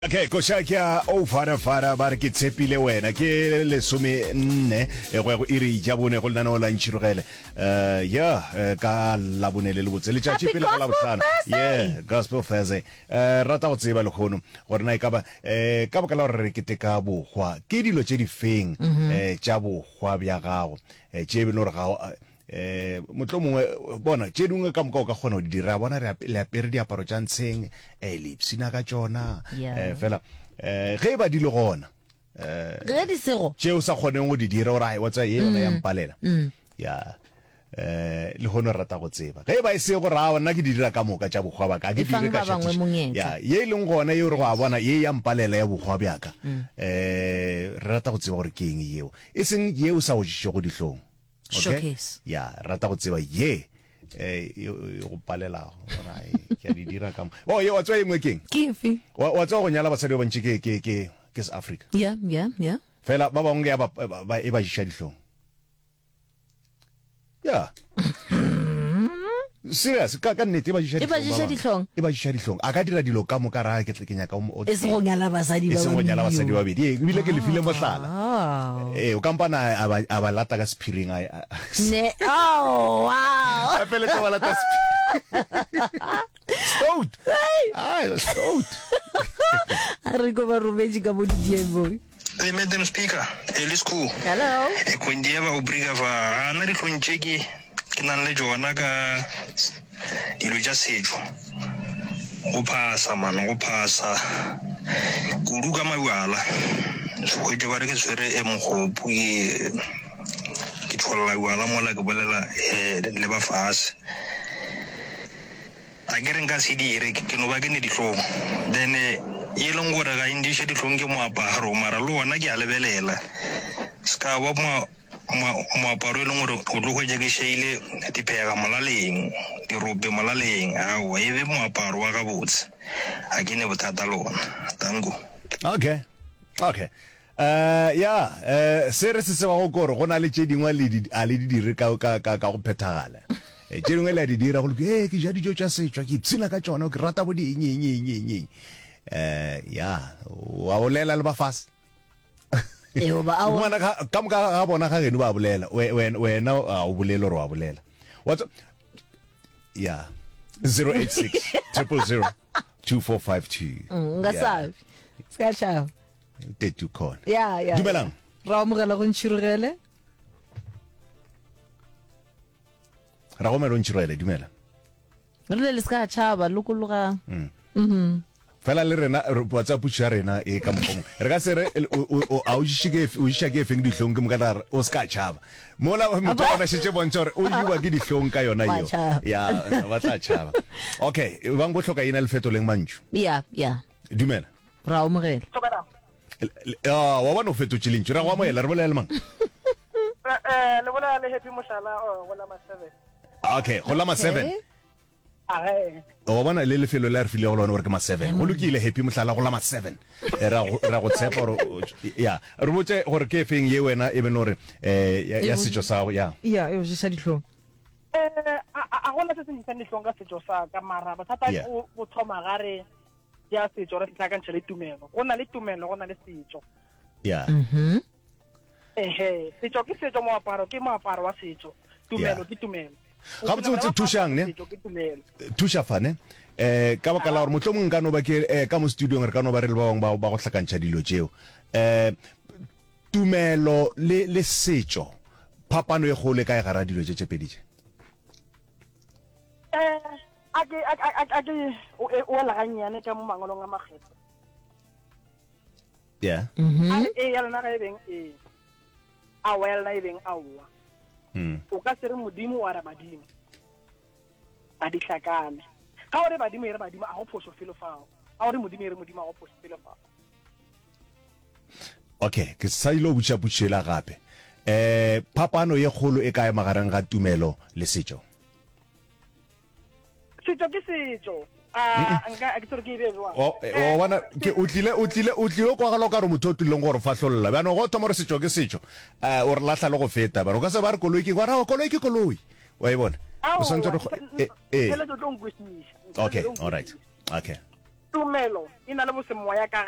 okay koša ke a o farafara ba re ke tshepile wena ke lesome nne e go ya go iri ja bone go lenaneo la ntšhirogele um ya eh, ka labone le le botse letšatši pele ga labohlano ye gospel thursday um rata go tseba lekgono gore na e kaba um ka boka la gore re keteka bokgwa ke dilo tše di feng um tša bokgwa bja gago um tše e be le gore ga o- eh motlo mongwe bona tše dingwe ka moka o ka kgona go di dira bona le apere diaparo tša ntsheng um eh, le ipsina ka tšona eh, fela um ge e ba di le gona um ge di sego tše o sa kgoneng go di dira ore wa tsa ye yona ya mm. mpalela mm. ya eh le hono rata go tseba ge e ba e se go ra nna ke di dira ka moka tša bokgwa baka ke dire ka ya ye e leng gona ye re go a bona ye ya mpalela ya bokgwa bjaka um re rata go tseba gore ke eng yeo e seng ye o sa go dišego dihlong Okay? Showcase. ya rata go tseba ye eh, e e go palelago Bona, eh, ke a di dira ka mo- o ye wa tswa engwe keng Ke efe? wa wa tswa go nyala basadi ba bantši ke ke ke ke se africa Yeah, yeah, yeah. fela ba bangwe ya ba- ba- ba- e ba jiša dihlong ya Serious, ka, ka nnete, e ba ješa E ba dihlong, ješa ba bangwe. dihlong. E ba ješa dihlong. A ka dira dilo ka moka, ra, ke, ke nyaka o, mo- o E se go nyala basadi E ba se go nyala babedi, basadi ba yo. babedi. Ee, ebile ke le file mohlala. Aowa. Ee, o ka mpana a, a ba, a ba lata ka sephiring, a, a, a, Ne, aowa. a feletša ba lata sephiring. Stout! Ah, stout! A re ko ba rometše ka mo didieng boy. They made them speaker, early school. Hello. E kondieba o briga fa a na ditlong tše ke ke nang le tšona ka dilo tša setšo. Go phasa man, go phasa. Kudu ka mabjala. Sehwetše ba re ke tshwere e mogopo ke ke tšholla bjala mola ke bolela eh, le ba fase. A ke re nka se dire, ke no ba ke ne dihlong. Then e leng gore ga e ndiše dihlong ke moaparo, mara le ona ke a lebelela. Se ka ba moa, moa, moaparo e leng gore o tlo hwetša ke šeile diphega molaleng, dirope molaleng. Aowa, e be moaparo wa gabotse. Ga ke ne bothata le ona. Danko. Okay. Okay. Ee, ya, ee, se re se tsebago ke gore go na le tše dingwe a le di, a le di dire ka, ka, ka, ka go phethagala. Ee, tše dingwe le a di dira go loke, ee, ke ja dijo tša setšwa, ke ipshina ka tšona, ke rata bo di eng, eng, eng, eng, eng. Ee, ya, wa bolela le ba fase. Eo ba a o- Ngwana ka, ka moka ga bona ga geno ba bolela, we, we, wena ga o bolele gore wa bolela. Wa tse- ya, 086 000 2452. Mm, nka Yeah. sabe. Ska šaba. tete o khona ya ya dumelang ra amogela go ntšhirogele ra gomela o ntšhirogele dumela re le le se ka tšhaba lokologa mm. mm-hmm. fela le rena whatsapp puso ya rena e ka mokgong re ka se re a o iša ke efeng ditlhong ke moka tare o se ka tšhaba mola motho a bona šetse bontsha gore o jewa ke ditlhong ka yona eo ya ba tla tšhaba okay bang bo tlhoka ena le fetoleng mantšu ya ya dumela ra omogela ah, wa bona o fetotše lentši ra go amogela re bolela le mang eh, eh, le bolela le happy mohlala oh, go lama seven okay go lama seven wa bona le lefelo le re file go lone gore ke ma seven go lokile happy mohlala go lama seven eh, ra go tshepa gore ya re botse gore ke efeng ye wena e bene gore um ya setso sa gago ya ya e ojesa ditlhong um a gona se se ntshang ditlhong ka setso sa ka mara bothata o thoma gare ya setso re setlakantšha le tumelo go na le tumelo go na le setso ya mhm. ehe setso ke setso moaparo ke moaparo wa setso tumelo ke tumelo ga botse botse thušang ne thuša fane um eh, ka baka la gore motlho mongwe ka no ba ke eh, ka mo studiong re ka no ba re le ba bangwe ba go tlhakantšha dilo tšeo um tumelo le setso phapano e gole ka e gara dilo tše tše pedi tše A ke, a, a, a ke o, e, o ela gannyane ka mo mangwalong a makgetho. Yeah. A Mhm. re ee ya lona ga e beng ee, aowa ya lona e beng aowa. Mm. O ka se re Modimo wa re badimo. Ba di hlakane. Ga o re badimo e re badimo, a go phoso felo fao. Ga o re Modimo e re Modimo, a go phoso felo fao. Okay, ke sa ile go botša potšišo ela gape. Eh, phapano ye kgolo e kae magareng ga tumelo le setšo? setso ke setso bona ke o tlile o tlile o tlile kwa galo ka re motho o tlileng gore fahlolola bjano go thoma gore setšo ke setšo um o re latlha le go feta bjano ka se ba re koloi ke gona koloi ke koloi wa e bona o swantse re ee okay all right okay tumelo e na le bosemoya ka ga